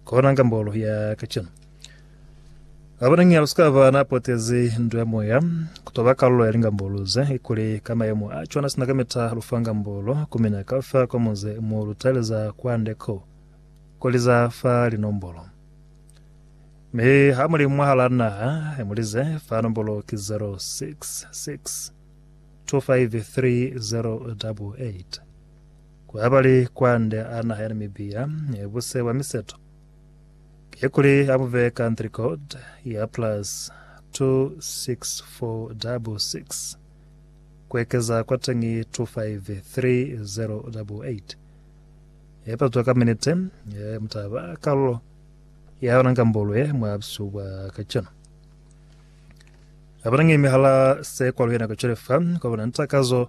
Kona nga mbolo ya kacenu. Abona ngi alusikava na potezi ndo ya moya, kutoba kalulo ya lingambolo ze, ikuli ka mayemo a cwana sina kamita lufa ngambolo, kumina kafa kwa muze mo lutaeleza kwa nde ko, kuli za fa linombolo. Mi ha muli mwahala naha, mulize, fa nombolo ki 066 253 088. Ku abali kwande a naha ya Namibia buse bwa miseto ye kuli a bu bee country code ya plus 26466 ku ekeza kwa teñi 253088 ye patwa ka minite ye mutaba kalulo ya yona ngambulwe mwa busihu bwa kacenu. Abanangimi hala se kwaluyena kacwele fa kwa bona ntakazo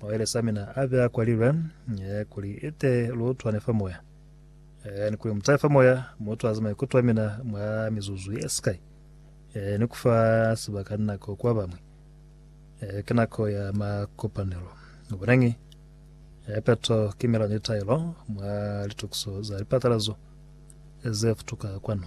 Maweles a mina a be a kwalilwe, kuli ite lu utwane fa moya. Ni kuli mu tahe fa moya, mu utwaze maikuto a mina mwa mizuzu ye sikai, ni ku fa sibaka ni nako ku ba bañwi. Ki nako ya makopanelo. Bonañi, peto ki melano ye taelo mwa litokiso za lipatalazo ze futuka kwanu.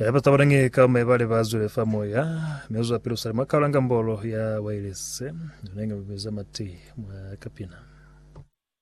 Haiba taba nange ka me bale ba zwile fa moya me uzwa pelo sale mwa kaulanga mbolo ya wailese nange mubeza mati mwa kapina.